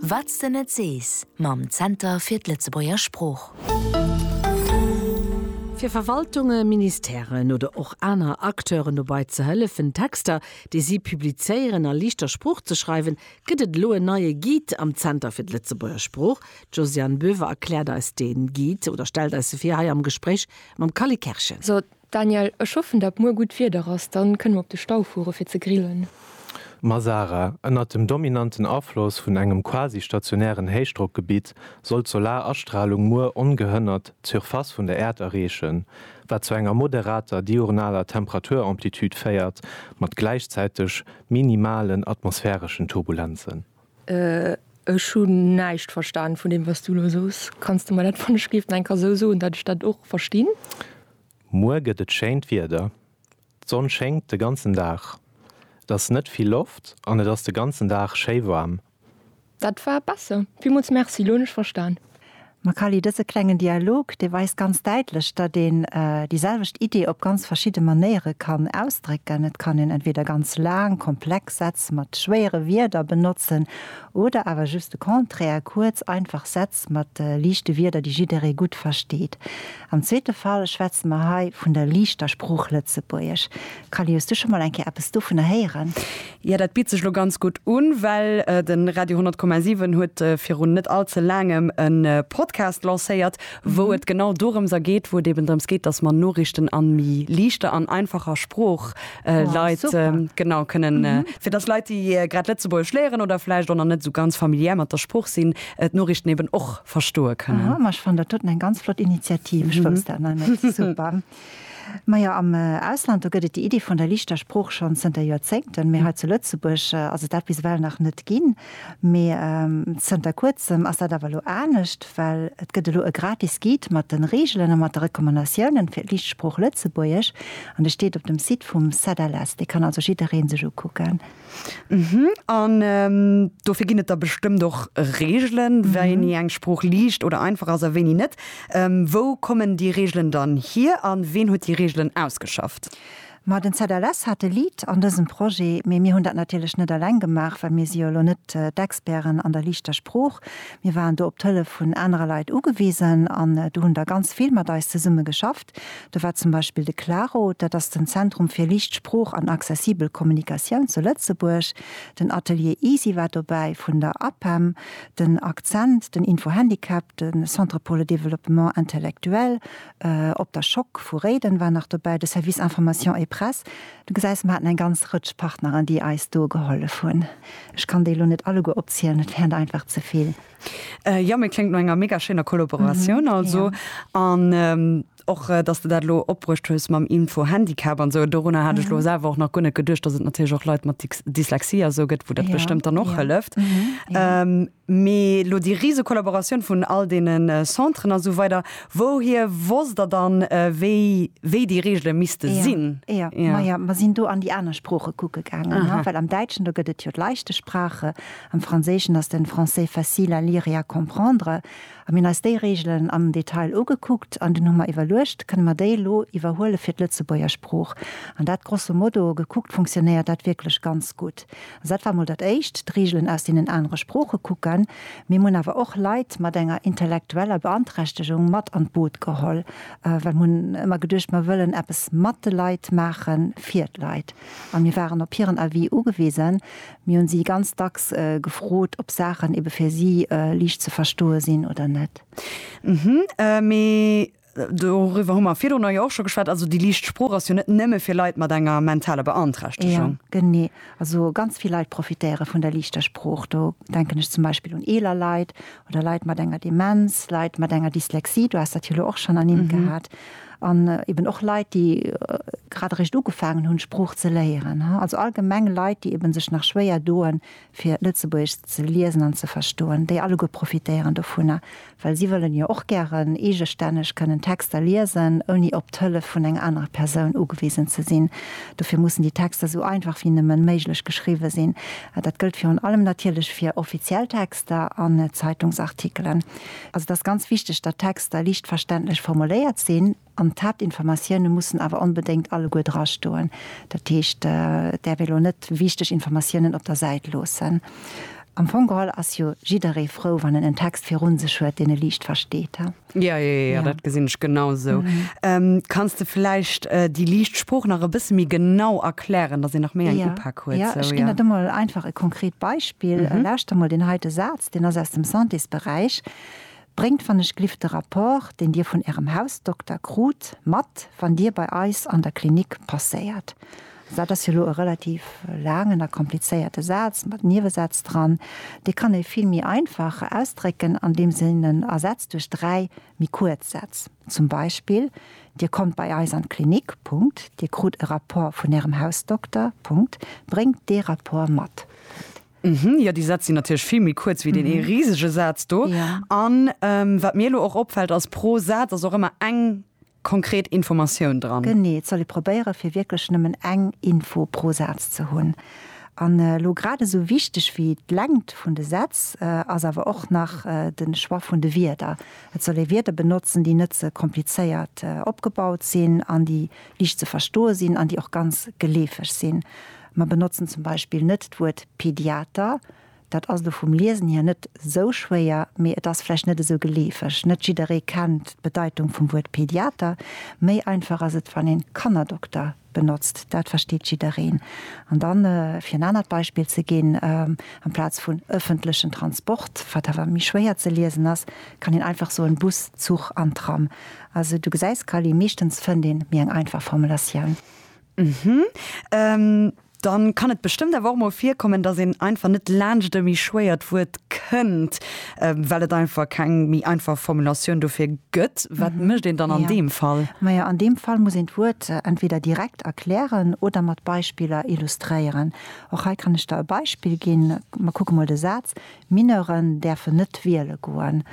Wat s de net sees mam Zenter fir d'Lëtzebuerger Sprooch. Fir Verwaltunge, Ministèren oder och aner Acteuren dobei ze hëllefen, Texter, déi si publizéieren, a liichter Sprooch ze schreiwen, gëtt et elo en neie Guide am Zenter fir d'Lëtzebuerger Sprooch. D'Josiane Boever erkläert eis dee Guide oder stellt eis e vir hei am Gespréich mam Kally Kerschen. Daniel, ech hoffen dat muer gudd Wieder ass, dann kënne mer op de Stau fueren fir ze grillen. Mazara, Ënnert dem dominanten Afloss vun engem quasi-stationären Héichdrockgebitt soll d'Solarastralung muer ongehënnert d'Surface vun der Äerd erreechen, wat zu enger moderater diurnaler Temperaturamplitude féiert, mat gläichzäiteg minimalen atmosphäreschen Turbulenzen. Ech hun näischt verstan vun dem waats du elo soos. Kanns de mer dat wann ech géif enker sou soen dat ech dat och verstinn? Muer gëtt et schéint Wieder, d'Sonn schéngt de ganzen Dag, et ass net vill Loft an et ass de ganzen Dag schéi waarm. Dat war besser. Villmools Merci, lo hunn ech verstan. Makali, Dëse klengen Dialog, dee weist ganz däitlech, datt een déi selwecht Iddi op ganz verschidde Manéiere kann ausdrécken. Et kann een entweeder ganz laang, komplex Sätz mat schwéiere Wierder benotzen oder awer just de Contraire, kuerz, einfach Sätz mat liichte Wierder, déi jidderee gutt versteet. Am zweete Fall schwätze mer hei vun der liichter Sprooch Lëtzebuergesch. Kalle, hues du scho mol eng Kéier eppes dovunner héieren? Jo, dat bitt sech lo ganz gutt un, well de Radio 100,7 huet virun net all ze laangem e Podcast lancéiert, wou et genau dorëms a geet, wou et eben drëms geet, dass mer Noriichten a méi liichter an einfacher Sprooch äh, Leit äh, genau kënnen mm -hmm. äh, fir dass Leit die äh, grad Lëtzeburg schléieren oder vielleicht auch net so ganz familiär mat der Spruch sinn et äh, Norrichten eben och verstoe kënnen Mach van der toten eng ganz flott Initiativ mm -hmm. super. Ma ja am äh, Ausland do gëtt die Idee vun der lichter Spruch schon zënter Joerzéngten mé mm. zu Lëtzeburg äh, also dat bis well nach net ginn. Mee zënter kuerzem ass dat awer elo anescht, well et gëtt elo e gratis Guide mat de Reegelen a mat de Recommandatiounen fir d'Lichtsprooch Lëtzebuergesch an dee steet op dem Site vum CEDELES. Dee kann also jiddereen sech ukucken. Uhmm. An dofir ginn et da bestëmmt och Reegelen, wéini eng Sprooch liicht oder einfach ass a wéini net. Wou kommen déi Reegelen dann hier an ween huet déi Reegelen ausgeschafft? Ma den ZLS hat e Lead an dësem Projet, mee mir hunn dat natierlech net eleng gemaach, well mir si jo elo net d'Experten an der liichter Sprooch. Mir waren do op d'Hëllef vun anerer Leit ugewisen an do hunn der ganz vill mat eis zesumme geschafft. Do war zum Beispill de Claro, dat ass den Zentrum fir liicht Sprooch an accessibel Kommunikatioun zu Lëtzebuerg, den Atelier Easy war dobäi vun der APEM, den Akzent, den Info-Handicap, de Centre pour le développement intellectuel, Op der Schock vu Réiden war nach dobäi de Service Information et Presse. Du gesäis, mer haten eng ganz Rëtsch Partneren, déi eis do gehollef hunn. Ech kann déi elo net alleguer opzielen, dat wäert einfach ze vill. Jo, mee kléngt no enger mega schéiner Kollaboratioun also. An och, dass de dat elo opbruecht hues mam Info-Handicap an esou, dorunner hat ech elo selwer och nach guer net geduecht, dass et natierlech och Leit mat Dyslexie a sou gëtt, wou dat bestëmmt dann och hëlleft. Mee lo déi rise Kollaboratioun vun all deene Centren a sou weider, wouhier wosst Der dann, wéi déi Reegele misste sinn? Jo, majo, mer sinn do an déi aner Sprooche kucke gaangen, well am Däitschen, do gëtt et jo d'Leichte Sprache, am Franséischen ass den Français facile à lire et à comprendre. A mir hunn eis déi Reegelen am Detail ugekuckt an dunn hu mer iwwerluecht, Kënne mer déi elo iwwerhuele fir d'Lëtzebuerger Sprooch? An dat grosso modo gekuckt funktionéiert dat wierklech ganz gutt. Dat war mol dat éischt, d'Reegelen aus deenen anere Sprooche kucken. Mee mir hunn awer och Leit mat enger intellektueller Beanträchtegung mat an d'Boot geholl, well mir hunn ëmmer geduecht, mir wëllen eppes mat de Leit maachen, fir d'Leit. A mir waren op hiren Avis ugewisen. Mir hu si ganz dacks gefrot, ob Saachen ebe fir si liicht ze verstoe sinn oder net. Mee Doriwwer hu mer virdrun jo och scho geschwat. Also déi liicht Sprooch ass jo net nëmme fir Leit mat enger mentaler Beanträchtegung. Jo, genee. Also ganz vill Leit profitéiere vun der liichter Sprooch. Do denken ech zum Beispill un eeler Leit oder Leit mat enger Demenz, Leit mat enger Dyslexie, du has dat jo elo och schonn ernimmt gehat, an eben och Leit, déi grad eréischt ugefaangen hunn, d'Sprooch ze léieren. Also allgemeng Leit, déi eben sech nach schwéier doen, fir Lëtzebuergesch ze liesen an ze verstoen, déi alleguer profitéieren dovunner, well si wëllen jo och gären eegestänneg kënnen Texter liesen, ouni op d'Hëllef vun enger anerer Persoun ugewisen ze sinn. Dofir mussen déi Texter esou einfach wéi nëmme méiglech geschriwwe sinn. Dat gëllt virun allem natierlech fir offiziell Texter an Zeitungsartikelen. Also et ass ganz wichteg, datt d'Texter liicht verständlech formuléiert sinn. An d'Haaptinformatioune mussen awer onbedéngt alleguer drastoen. Dat heescht, et däerf ee lo net wichteg Informatiounen op der Säit loossen. Am Fong geholl ass jo jidderee frou, wann en en Text viru sech huet, deen e liicht versteet. Jo, jo, jo, dat gesinn ech genau sou. Kanns de vläicht déi liicht Sprooch nach e bësse méi genau erklären, datt een nach méi eng Upak huet? Jo, ech ginn der do mol einfach e konkret Beispill. Lauschter mol deen heite Saz, deen ass aus dem Santésberäich, Bréngt wann ech gliff de Rapport, deen Dir vun Ärem Hausdokter krut, mat, wann Dir bei eis an der Klinik passéiert. Also dat ass jo elo e relativ laangen a komplizéierte Saz mat Niewesätz dran. Dee kann ee vill méi einfach ausdrécken, andeems een en ersetzt duerch dräi méi kuerz Sätz. Zum Beispill, Dir kommt bei eis an d'Klinik. Punkt. Dir krut e Rapport vun Ärem Hausdokter. Punkt. Bréngt dee Rapport mat. Punkt. Mhm, jo déi Sätz sinn natierlech vill méi kuerz wéi deen ee risege Saz do. An wat mir elo och opfält ass, pro Saz ass och ëmmer eng konkret Informatioun dran. Genee, et soll ee probéiere fir wierklech nëmmen eng Info pro Saz ze hunn. An elo grad esou wichteg wéi d'Längt vun de Sätz ass awer och nach de Choix vun de Wierder. Et soll ee Wierder benotzen, déi net ze komplizéiert opgebaut sinn an déi liicht ze verstoe sinn an déi och ganz geleefeg sinn. Mer benotzen zum Beispill net d'Wuert Pediater. Dat ass elo vum Liesen hier net esou schwéier, mee et ass vläicht net esou geleefeg. Net jidderee kennt d'Bedeitung vum Wuert Pediater. Méi einfach ass et, wann een Kannerdokter benotzt. Dat versteet jiddereen. An dann, fir en anert Beispill ze ginn, amplaz vun ëffentlechen Transport, wat awer méi schwéier ze liesen ass, kann een einfach soen Bus, Zuch an Tram. Also du gesäis, Callie, meeschtens fënnt een méi eng einfach Formulatioun. Ëhm, dann kann et bestëmmt awer och mol virkommen, dass een einfach net laanscht e méi schwéiert Wuert kënnt, well et einfach keng méi einfach Formulatioun dofir gëtt. Wat mécht een dann an deem Fall? Majo, an deem Fall muss een d'Wuert entweder direkt erklären oder mat Beispiller illustréieren. Och hei kann ech der e Beispill ginn. Mer kucke mol de Saz, Mineuren däerfen net wiele goen.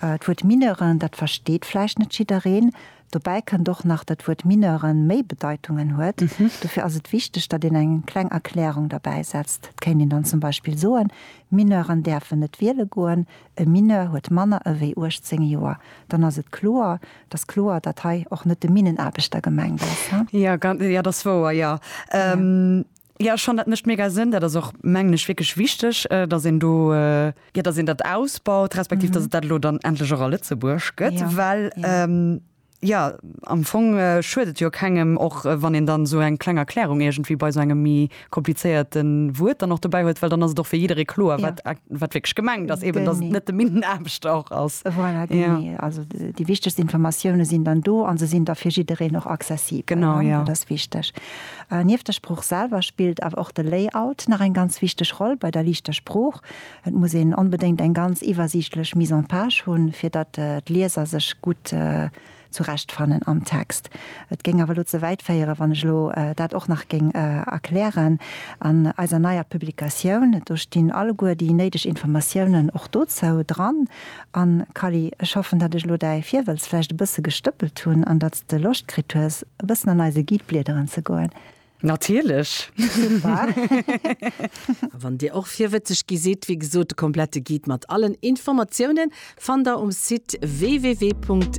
D'Wuert Mineuren, dat versteet vläicht net jiddereen, Dobäi kënnt och nach dat d'Wuert Mineuren méi Bedeitungen huet. Dofir ass et wichteg, datt een eng kleng Erklärung derbäi setzt. Et kéint een dann zum Beispill soen, Mineuren däerfen net wiele goen, e Mineur huet manner ewéi 18 Joer. Dann ass et kloer, datt kloer, datt hei och net de Minnenaarbechter gemengt ass. Jo, dat ass wouer, jo. Jo, ech fannen dat mécht mega Sënn. Dat ass och, mengen ech, wierklech wichteg, datt een do, jo, datt een dat ausbaut, respektiv datt et dat elo dann endlech och a Lëtzebuerg gëtt, well, jo, am Fong schuet et jo kengem, och wann een dann esou eng kleng Erklärung iergendwéi bei esou engem méi komplizéierte Wuert dann och dobäi huet, well dann ass et och fir jidderee kloer, wat wierklech gemengt ass, eben datt et net de Minnenaarbechter och ass. Voilà, genee. Also déi wichtegst Informatioune sinn dann do a se sinn da fir jiddereen och accessibel. Genau, jo. Dat ass wichteg. Nieft der Sprooch selwer spillt awer och de Layout nach eng ganz wichteg Roll bei der liichter Sprooch. Et muss een onbedéngt eng ganz iwwersiichtlech Mise en page hunn, fir datt d'Lieser sech gutt zurechtfannen am Text. Et géing awer elo ze wäit féieren, wann ech elo dat och nach géing erklären. An eiser neier Publikatioun, do stinn alleguer déi néideg Informatiounen och dozou dran. An, Kally, ech hoffen, datt ech elo däi Virwëlz vläicht e bësse gestëppelt hunn an datt s de Loscht kritt hues, e bëssen an eise Guide bliederen ze goen. Natierlech! Super! A wann dir och virwëtzeg gi sidd, wéi gesot, de komplette Guide mat allen Informatiounen fannt der um Site www.